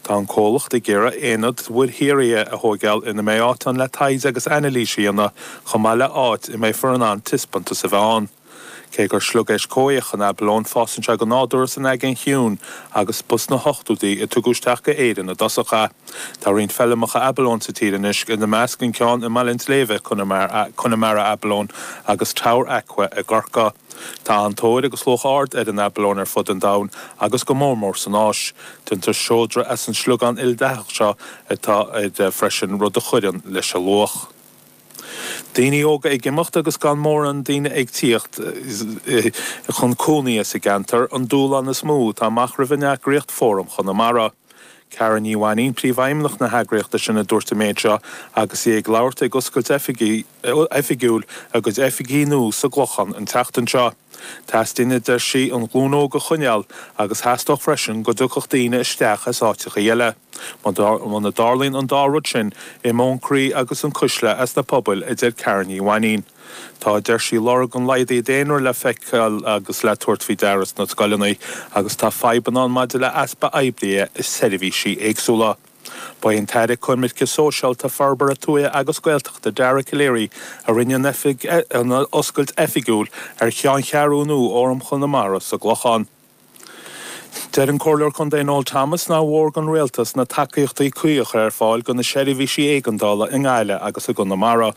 Tá an comhlacht ag iarraidh aonad don mhuirshaothrú a thóigeáil ina mbeidh áit ann le taighde agus ainilís a dhéanamh chomh maith le áit a mbeifear in ann taispeántas a bheith ann. Cé gur sliogéisc coimhthíoch an abalone fásann sé go nádúrtha san Aigéan Chiúin agus ba sna hochtúidí a tugadh isteach go hÉirinn i dtosach é. Tá roinnt feilmeacha abalone sa tír anois, ina measc an ceann i mBaile an tSléibhe, Connemara abalone, agus Tower Aqua i gCorcaigh. Tá an-tóir agus luach ard ar an abalone ar fud an domhain agus go mór mór san Áis. Déantar seodra as an sliogán ildathach seo atá air freisin, rud a chuireann leis a luach. Daoine óga ag imeacht agus gan mórán daoine ag tíocht chun cónaí sa gceantar an dúshlán is mó atá amach roimh an eagraíocht Fóram Chonamara. Karen Ní Mhainín, Príomhfheidhmeannach na heagraíochta sin a dúirt an méid seo agus í ag labhairt ag oscailt oifigiúil a gcuid oifigí nua sa gClochán an tseachtain seo. Teastaíonn, a deir sí, an ghlúin óg a choinneáil agus theastódh freisin go dtiocfadh daoine isteach as áiteachaí eile. Muna dtarlaíonn an dá rud sin, imeoidh an croí agus an chuisle as na pobail, a deir Karen Ní Mhainín. Tá, a deir sí, lorg an laghdaithe daonra le feiceáil agus le tabhairt faoi deara sna scoileanna agus tá fadhbanna ann maidir le easpa oibrithe i seirbhísí éagsúla. Ba é an tAire Coimirce Sóisialta, Forbartha Tuaithe agus Gaeltachta, Dara Calleary, a rinne an oscailt oifigiúil ar cheanncheathrú nua Fhóram Chonamara sa gClochán. Deir an Comhairleoir Contae Noel Thomas nár mhór don Rialtas na tacaíochtaí cuí a chur ar fáil do na seirbhísí éigeandála i nGaillimh agus i gConamara.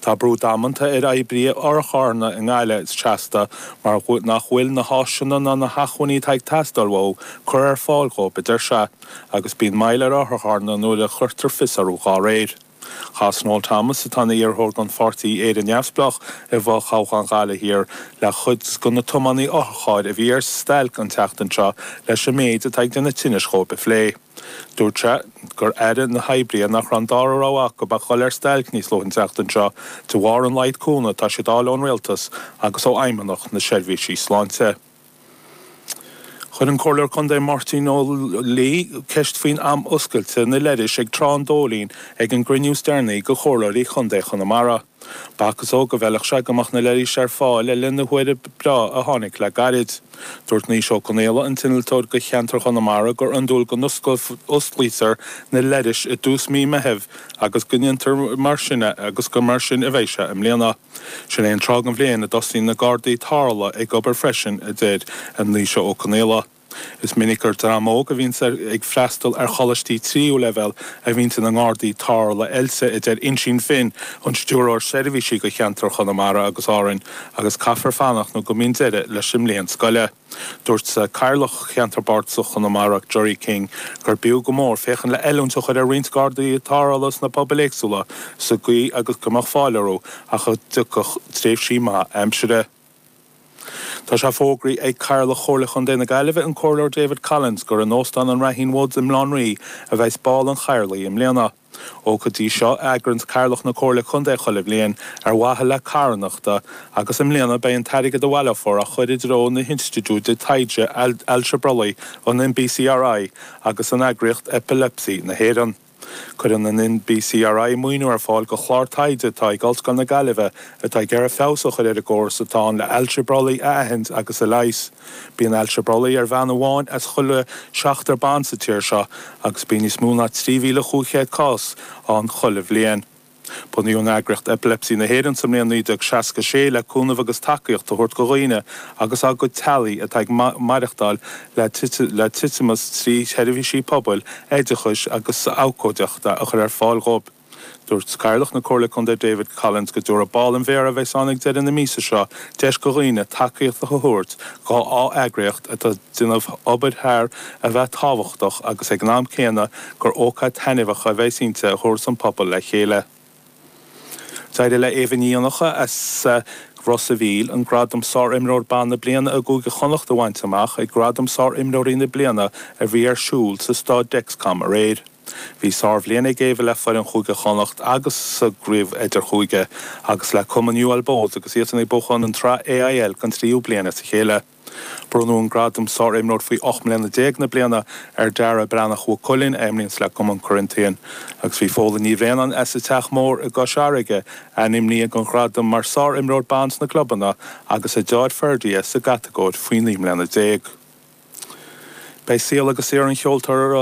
Tá brú damanta ar oibrithe otharcharranna i nGaillimh go seasta mar nach bhfuil na háiseanna ná na hacmhainní atá ag teastáil uathu curtha ar fáil dhóib, a deir sé, agus bíonn moill ar otharcharranna nuair a chuirtear fios orthu dá réir. Chas Noel Thomas, atá ina iarrthóir don pháirtí Éire Neamhspleách i bhfothoghchán Ghaillimh Thiar, le cuid de na tiománaithe otharchairr a bhí ar stailc an tseachtain seo leis an méid atá ag déanamh tinnis dhóibh a phlé. Dúirt sé gur airigh na hoibrithe nach raibh an dara rogha acu ach dhul ar stailc níos luaithe an tseachtain seo de bharr an laghad cúnamh atá siad a fháil ón Rialtas agus ó Fheidhmeannacht na Seirbhísí Sláinte. Chuir an Comhairleoir Contae Máirtín Ó Laoi ceist faoin am oscailte na leithris ag Trá an Dóilín ag an gcruinniú is deireanaí de Chomhairleoirí Chontae Chonamara. B'fhacthas dhó go bhfeilfeadh sé go mbeadh na leithris ar fáil le linn na huaire breá a tháinig le gairid. Dúirt Naoise Ó Conaola, an t-innealtóir do cheantar Chonamara gur iondúil go n-osclaítear na leithris i dtús mí Meithimh agus go ndéantar mar sin é agus gur mar sin a bheidh sé i mbliana. Sin é an tráth den bhliain a dtosaíonn na Gardaí tarrthála ag obair freisin, a deir Naoise Ó Conaola. Is minic gur dream óg a bhíonn ag freastal ar choláistí tríú leibhéal a bhíonn ina ngardaí tarrthála oilte, a deir Uinsinn Finn, an Stiúrthóir Seirbhísí do cheantar Chonamara agus Árainn. agus caithfear fanacht nó go mbíonn deireadh leis an mbliain scoile. Dúirt Cathaoirleach Cheantar Bardasach Chonamara, Gerry King, gur b'fhiú go mór féachaint le oiliúint a chur ar roinnt gardaí tarrthála sna pobail éagsúla sa gcaoi agus go mbeadh fáil orthu ach a dtiocfadh tréimhsí maith aimsire. Tá sé fógraithe ag Cathaoirleach Chomhairle Chontae na Gaillimhe, an Comhairleoir David Collins, gur in Óstán an Raheen Woods i mBaile Átha an Rí a bheas bál an Chathaoirligh i mbliana. Ócáid í seo a eagraíonn Cathaoirleach na Comhairle Contae chuile bhliain ar mhaithe le carthanachta agus i mbliana beidh an t-airgead a bhaileofar á chuir i dtreo na hInstitiúide Taighde Ailse Brollaigh, an NBCRI, agus an eagraíocht Epilepsy na hÉireann. Cuireann an NBCRI maoiniú ar fáil go chlár taighde atá ag Ollscoil na Gaillimhe atá ag iarraidh feabhas a chuir ar an gcóras atá ann le ailse brollaigh a aithint agus a leigheas. Bíonn ailse brollaigh ar bhean amháin as chuile seachtar ban sa tír seo agus bíonn níos mó ná 3,500 cás ann chuile bhliain. Bunaíodh an eagraíocht Epilepsy na hÉireann sa mbliain 1966 le cúnamh agus tacaíocht a thabhairt go dhaoine agus á gcuid teaghlaigh atá ag maireachtáil le titimeas trí sheirbhísí pobail, oideachais agus abhcóideachta a chur ar fáil dhóibh. Dúirt Cathaoirleach na Comhairle Contae David Collins go dtabharfadh bál an Mhéara a bheas ann ag deireadh na míosa seo deis go dhaoine tacaíocht a thabhairt go dhá eagraíocht atá ag déanamh obair thar a bheith tábhachtach agus ag an am céanna gur ócáid taitneamhach a bheas inti a thabharfas an pobal le chéile. D'éirigh le Éabha Nic Dhonnacha as Ros a' Mhíl an gradam Sárimreoir Ban na Bliana i gCúige Chonnacht a bhaint amach ag Gradaim Sárimreoirí na Bliana a bhí ar siúl sa Staid Dexcom aréir. Bhí sárbhliain ag Éabha le foireann Chúige Chonnacht sa gCraobh Idirchúige agus le Cumann UL Bohs agus iadsan ag buachan an tsraith AIL den tríú bliain as a chéile. Bronnadh an gradam 'Sárimreoir faoi Ocht mBliana Déag na Bliana' ar Dara Breathnach Mhaigh Cuilinn a imríonns le Cumann Corinthians agus bhí Fódhla Ní Bhraonáin as an Teach Mór i gCois Fharraige ainmnithe don ghradam mar 'Sárimreoir Ban' sna clubanna agus a deartháir Ferdia sa gcatagóir faoi naoi mbliana déag. Beidh saol agus saothar an cheoltóra